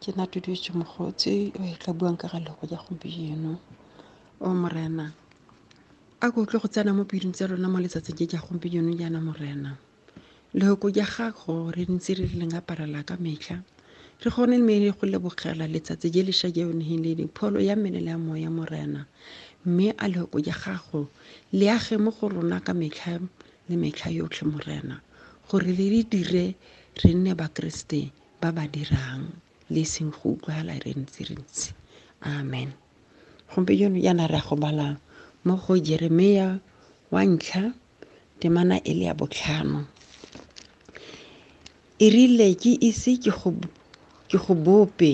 ke na tutuetse mogotse o e tla buang ka ga lego ja gompieno o morena a ko utlwe go tsena mo pelong tsa rona mo letsatsing je ja gompieno jaana morena lehoko ja gago re ntse re re leng aparela ka metlha re kgone mme re go lebogela letsatsi je lesha je o neng le le pholo ya mmele le ya moya morena mme a lehoko ja gago le age mo go rona ka metlha le metlha yotlhe morena gore le re dire Re nne Bakeresete ba ba dirang le e seng go utlwagala re ntse re ntse. Amen. Gompieno jaana re ya go bala mo go Jeremia wa ntlha temana e le ya botlhano. E rile ke ise ke go ke go bope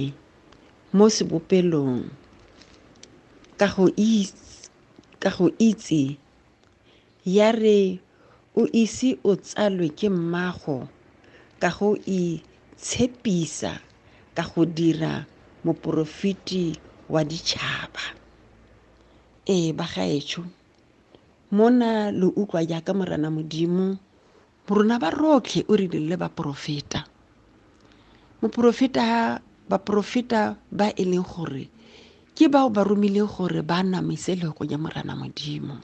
mo sebopelong ka go itse ka go itse Ya re o ise o tsalwe ke mmago ka go itshepisa ka go dira moporofeti wa ditšhaba. Ee, bagaetsho, mona lo utlwa jaaka Morena Modimo Borona ba rotlhe o rile le baporofeta. Moporofeta baporofeta ba e leng gore ke bao ba romileng gore ba namise lego ya Morana Modimo.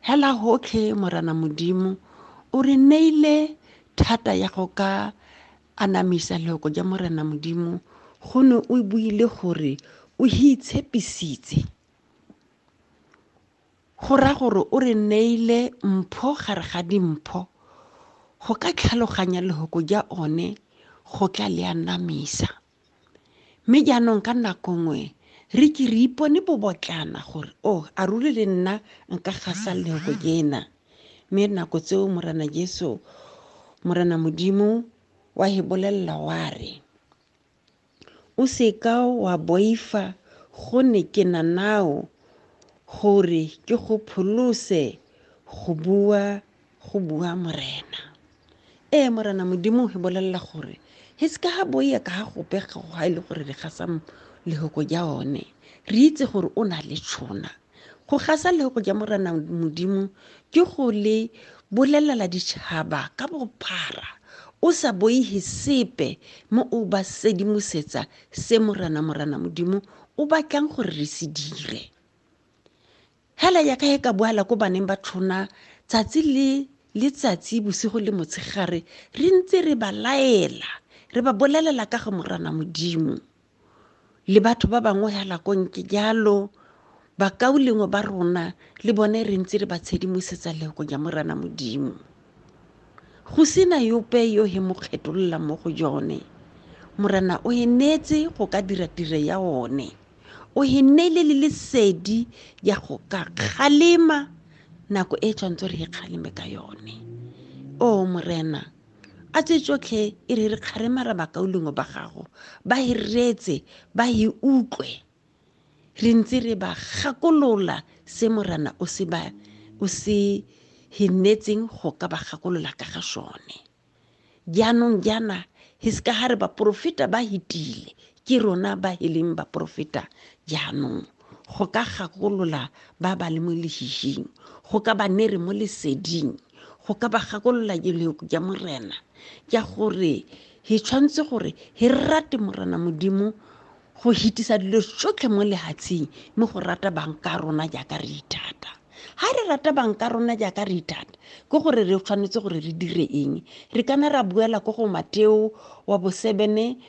Hela hotlhe Morana Modimo o re neile thata ya go ka anamisa lego ya Morana Modimo go ne o buile gore o itshepisitse Go raya gore o re neile mpho gare ga dimpho. Go ka tlhaloganya lehoko ja one go tla le anamisa. Mme jaanong ka nako nngwe re ke re ipone bobotlana gore o a ruri le nna nka gasa lehoko jena. Mme nako tseo Morena Jesu, Morena Modimo, wa he bolelela wa re, O se ka wa boifa gone ke na nao gore ke go pholose go bua go bua morena. Ee morena modimo he bolelela gore he se ka ga boia ka ga gope ga e le gore re gasa lehoko ja one re itse gore o na le tšhona. go gasa lego ja morena modimo ke go le bolelela ditšhaba ka bophara o sa boihe sepe mo o ba sedimosetsa se morena morena modimo o batlang gore re se dire hela ya ka e ka boala ko baneng ba tlhona tsatsi le letsatsi bosigo le motshegare re ntse re ba laela re ba bolelela ka go morana modimo le batho ba bangwe hela konke jalo bakaulengwe ba rona le bone re ntse re ba tshedimosetsa lego ja morana modimo go sena yope yo he mo kgetolola mo go jone morana o e neetse go ka dira tiro ya one o e neele le lesedi ya go ka kgalema nako e tshwanetse re e kgaleme ka yone o morena oh, a tse tsotlhe e re re kgaremara bakaulengwe ba gago ba e reetse ba e utlwe re ntse re ba gakolola se morana o se ba o se hennetseng go ka ba gakolola ka ga sone jaanong jaana hiska ga re baporofeta ba hitile Ke rona ba e leng baporofeta jaanong, go ka gakolola ba ba le mo lehihing, go ka ba nere mo leseding, go ka ba gakolola jeleko ja Morena, ja gore he tshwanetse gore he rate Morena Modimo go hitisa dilo tsotlhe mo lehatsheng, mme go rata bang ka rona jaaka re ithata. Ha re rata bang ka rona jaaka re ithata, ke gore re tshwanetse gore re dire eng? Re kana ra buela ko go Mateo wa bosebene